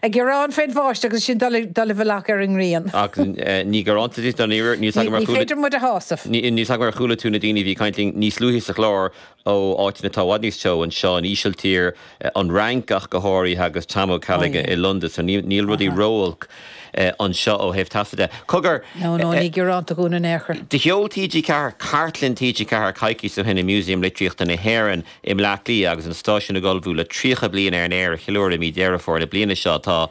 Ag gearán fén bháisteach agus sinn dul i bhfolach ar an ngrian. Ach ní gearánta dúinn dáiríre, níl 's agam ar chuala tú na daoine a bhí ag caint linn níos luaithe sa chlár ó áiteanna atá i bhfad níos teo, anseo, an Ísiltír, an Fhrainc ach go háirithe agus Tomaí Ó Ceallaigh i Londain, so níl rudaí ró-olc anseo ó thaobh teasa de. Cogar, No, no, ní gearánta dhúinn in aon chor. Do sheol TG4 cartlann TG4 coicís ó shin i Museum Litríochta na hÉireann. i mBleá Cliath agus an stáisiún ag ullmhú le 30 bliain ar an aer a cheiliúradh i mí Dheireadh Fómhair na bliana seo. Tá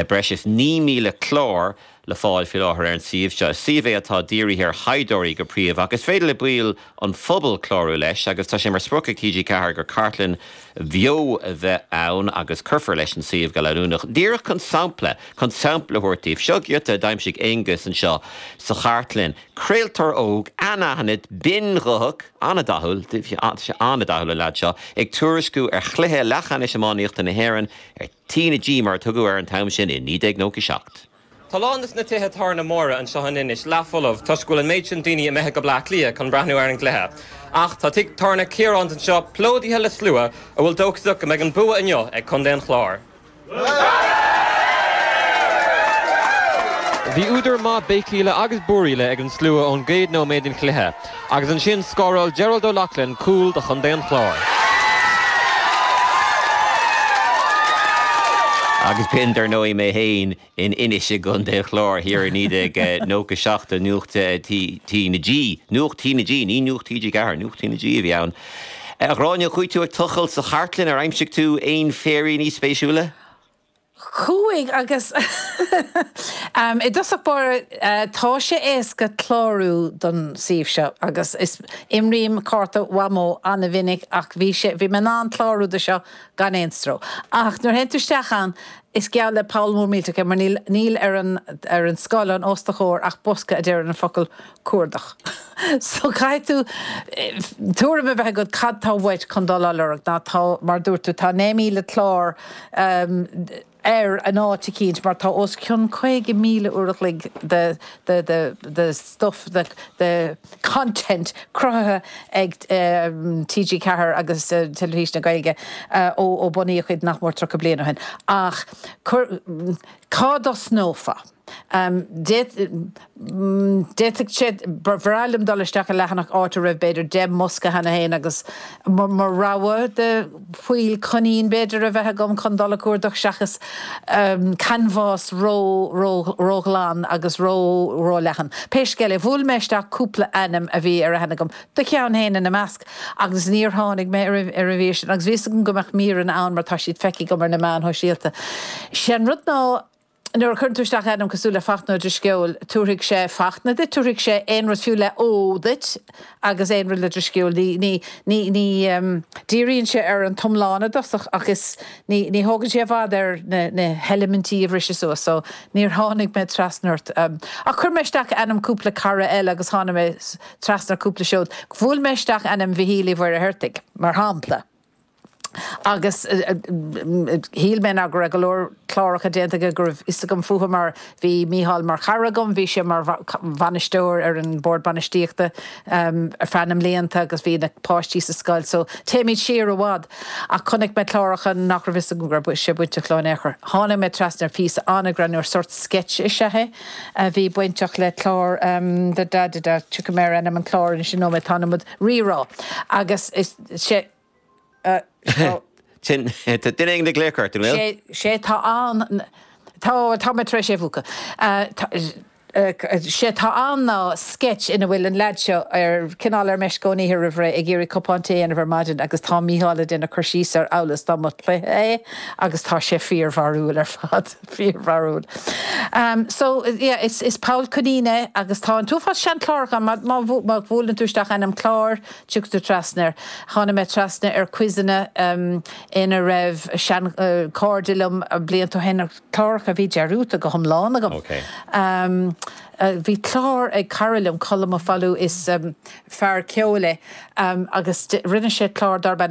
breis is 9,000 clár le fáil faoi láthair ar an suíomh seo. Is suíomh é atá dírithe ar thaighdeoirí go príomha ach is féidir le baill an phobail clárú leis agus tá sé mar sprioc ag TG4 gur cartlann bheo a bheidh ann agus cuirfear leis an suíomh go leanúnach. Díreach chun sampla chun sampla a thabhairt daoibh, seo giota a d'aimsigh Aonghus anseo sa chartlann, craoltóir óg anaithnid, binn-ghuthach. An-dathúil, an-dathúil an leaid seo, ag tuairisciú ar chluiche leathcheannais iománaíochta na hÉireann ar T na G mar a tugadh air an t-am sin i 1997. Tá a lán de na tithe tábhairne móra anseo in Inis leathfholamh toisc go bhfuil an méid sin daoine imithe go Bleá Cliath chun breathnú ar an gcluiche. Ach tá teach tábhairne Chiaráin anseo plódaithe le slua atá dóchasach go mbeidh an bua inniu ag contae an Chláir. Bhí údar maith béicíle agus búiríle ag an slua ón gcéad nóiméad den chluiche agus ansin scóráil Gerard O'Loughlin cúl do Chontae an Chláir. Agus b'shin, dar ndóigh, mé féin in Inis i gContae an Chláir thiar i 1997 do Nuacht T na G, Nuacht T na G, ní Nuacht TG4, Nuacht T na G a bhí ann. A Ghráinne, chuaigh tú ag tochailt sa chartlann, ar aimsigh tú aon fhéiríní spéisiúla? Chuaigh agus i dtosach báire tá sé éasca clárú don suíomh seo agus is, imrím cárta Mhamó an-mhinic ach bhí sé, bhí mé in ann clárú do seo gan aon stró ach nuair a théann tú isteach ann Is geall le poll mór millteach é, mar níl ar an ar an scáileán os do chomhair ach bosca a deir an focal cuardach so caithfidh tú tuairim a bheith agat cad tá uait chun dul á lorg Now tá, mar a dúirt tú, tá 9,000 clár ann áit eicínt mar tá os cionn 50,000 uair a chloig de stuif, de content cruthaithe ag TG4 agus Teilifís na Gaeilge ó bunaíodh iad nach mór tríocha bliain ó shin ach cá dtosnófá? D'fhéadfadh sé ba bhreá liom dul isteach i leathanach áit a raibh b'fhéidir deich mbosca cheana féin agus mo rogha de fáil coinín b'fhéidir a bheith agam chun dul ag cuardach seachas canbhás róghlan agus róleathan. Pé scéal é, bhuail mé isteach cúpla ainm a bhí ar aithne agam, do cheann féin ina measc, agus níor tháinig mé ar an mhír sin, agus bhí 'fhios agam go mbeadh míreanna ann mar tá siad feicthe agam ar na meáin shóisialta. Sé an rud ná. Nuair a chuireann tú isteach ainm cosúil le Fachtna Ó Drisceoil, tabharfaidh sé Fachtna duit, tabharfaidh sé aon rud fiú le 'Ó' duit agus aon rud le Drisceoil. Ní, ní, ní, ní dhíríonn sé ar an t-iomlán i dtosach ach is, ní, ní thógann sé i bhfad air na heilimintí a bhriseadh suas. So, níor tháinig mé trasna ort. Ach chuir mé isteach ainm cúpla cara eile agus tháinig mé trasna ar cúpla seod. Bhuail mé isteach ainm Mhichíl Uí Mhuircheartaigh, mar shampla. agus shíl mé, ná go raibh go leor cláracha déanta aige go raibh fhios agam fúthu mar bhí Micheál mar chara agam, bhí sé mar bhainisteoir ar an Bhord Bainistíochta ar feadh na mblianta agus bhí na páistí sa scoil so téimid siar i bhfad ach chonaic mé cláracha nach raibh fhios agam go raibh sé bainteach leo in aon chor. Tháinig mé trasna ar phíosa an-greannmhar, sórt sketch is ea é, a bhí bainteach le clár da da da da, tiocfaidh mé ar ainm an chláir anois i nóiméad, tá an iomad rírá agus. sé tá. sin, tá duine ag glaoch ort, an bhfuil? sé sé tá ann tá tá mé tar éis é mhúcadh séard atá ann ná sceits ina bhfuil an lead seo ar cineál ar meisce ón oíche roimh ré ag iarraidh cupán tae a dhéanamh ar maidin agus tá Mícheál ag déanamh cur síos air amhail is dá mba chluiche é agus tá sé fíor bharrúil ar fad fíor bharrúil so yeah is is Pól Ó Coinín é agus tá an t-uafás seanchláracha ann má má bhuaileann tú isteach ainm clár Tagtar trasna air. Tháinig mé trasna ar quizeanna ina raibh seanchairde liom blianta ó shin. Cláracha a bhí dearúdta go hiomlán agam. Bhí clár ag cara liom, Colm Ó Foghlú, is fear ceoil é, agus rinne sé clár darb ainm